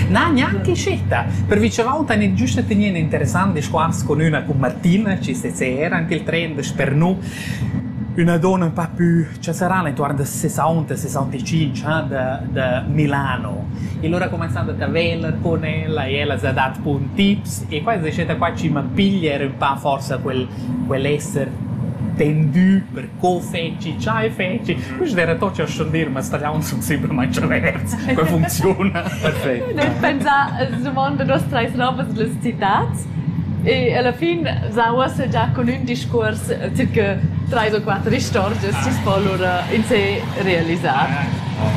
Na, gnanca uscita. Per vice volta han ins giusta tegniu in interessant discuors cun üna cun Martina chi sesera ant il tren dasper nous. Üna donna un pa pü cha saran intuorn da sesaunt e sesauntcinque ah, da da Milano. E lura cumanzand a taveller cun ella e ella s'ha dat bun tips e quai es stata qua chi m'ha piglia ero ün pa forsa quel quel esser tendü per Co feci, chai feci? Quist era tot cha schon dir, ma stagliauns sun simplamaing tscherverts. Qua funcziuna. Perfect. Nus pensar as dumond da nos trais novas las citats e alla fin sa uossa già con ün discuors circa trais o quatter istorgias chi s'po lura in sé realisar.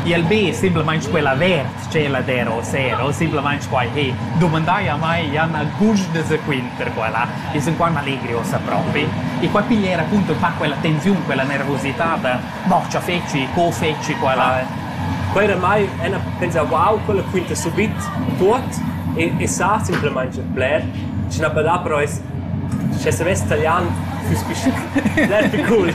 Il be simplamaing quella verd Tschelladero sero, simplamain quai he dumandai a mai Jan Agusch de Sequint per quella. Ils in qual m'allegri ossa propi. E qua piglier appunto fa quella tensiun, quella nervositat, mo cha feci, co feci quella. Quei era mai, ella pensava wow, quella quinta subit tuot e, e sa simplamain bler, sche na da però es, sche savess talian füss più, bler più cool.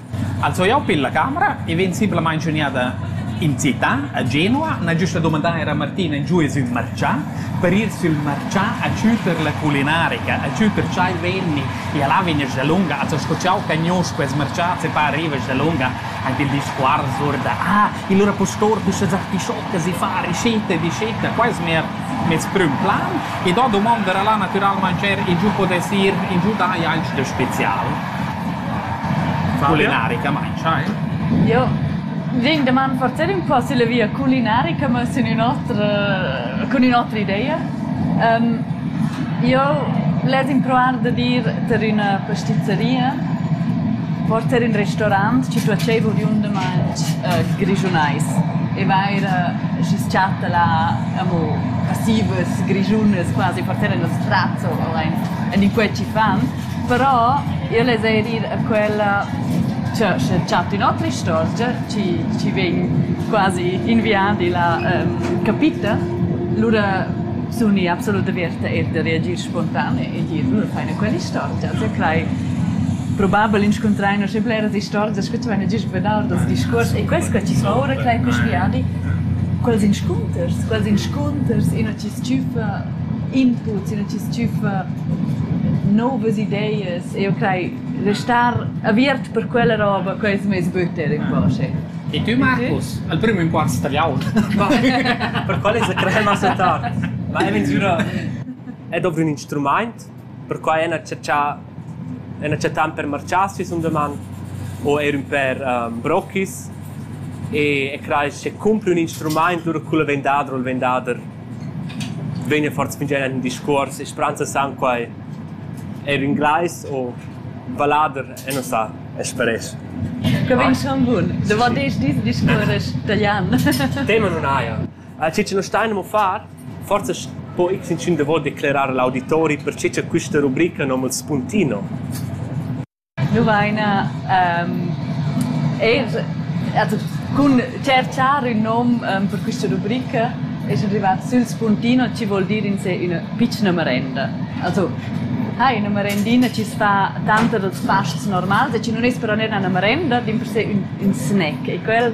Als ho eau pil la camera e vegn simplamaing schugnada in città a Genua. N'ha giüst da dumandar eir a Martina in giù es ün marchà per ir sül marchà a tschüter la culinarica, a tschüter ch'el vegni e là vegna dalunga. Also sco ch'eau cagnuosch quels marchats e pa arrivas dalunga ant il discuors our da: «Ah, e lura pustor, düstas artischoccas e far ricetta e dicetta». Quai es mner Mes prüm plan ed ho dumonda da la natüralmaing eir ingiün podess ir ingiü da Jaisch da spezial. Culinaricamaing, eh? Io vegn da man forsa ün po sulla via culinarica, ma sun ün'otra cun ün'otra ideia. Io less impruar da dir tar üna pastizaria, forsa ün restorant, schi tuot dschaiv oriundamaing grischunais, e vaira schi's chatta là amo passivas grischunas quasi per tener nos sprazzo allein en in quei ci fan però io les eir ir a quella cioè sche chat in otra istorgia ci ci vegn quasi inviadi la um, capita lura suni absolut averta e da reagir spontan e dir lura fai quell'istorgia se crei probabel inscuntrai noch bleras istorgias che tu hai già vedere das discurs e questo che ci sono ora crei questi viadi Quels inscunters, quels inscunters, ina chi s-chüffa inputs, ina chi s-chüffa novas ideas. Eu crai restar aviert per quella roba, quai es meis butter ün po, schi. E tü Marcus, al prüm inquart tagliaun. Per quel esa crei il nossa tard. Ma e minzura. E dovri ün instrumaint? Perquai han acceptà han acceptà ün per marchas sisum daman u eir ün per brochis e e crai sche cumpra ün instrumaint lura cul vendader o il vendader vegna fat sfingier ün discuors e spranza san quai eir inglais o vallader e non sa. As paress. Que vegn schon bun. Davo desch dis discuorresch talian. Tema nun haja. Ciccio nu stain amo far, Forsa po ins inschun davos declerar l'auditori pertgei che questa rubrica nom il Spuntino. Nu vaina eir also cun tscherchar ün nom per quista rubrica es rivat sül Spuntino chi vuol dir in se üna pitschna merenda. Also ha ina merendina chi's fa tanter ils pasts normals e chi nun es però neir üna merenda, dimpersè ün ün snack e quel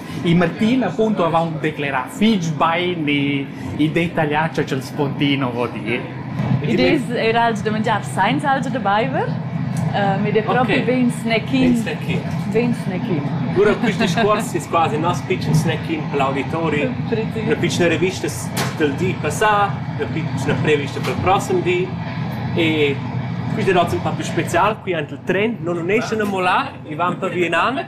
Il Martin appunto avaunt declerà fich bain il detaglià cha cha'l Spontino vo dir. Id es eir els da mangiar sainza els da baiver. Um, ed è proprio okay. vegn snacking. Vegn snacking. Cura quist discuors es quasi il nostro pitschen snacking per l'auditori. Una piccina rivista del di passà, una piccina prevista per il prossimo di. E quist è un po' più special qui ant il tren, non unesce a molà, e van per Vietnam.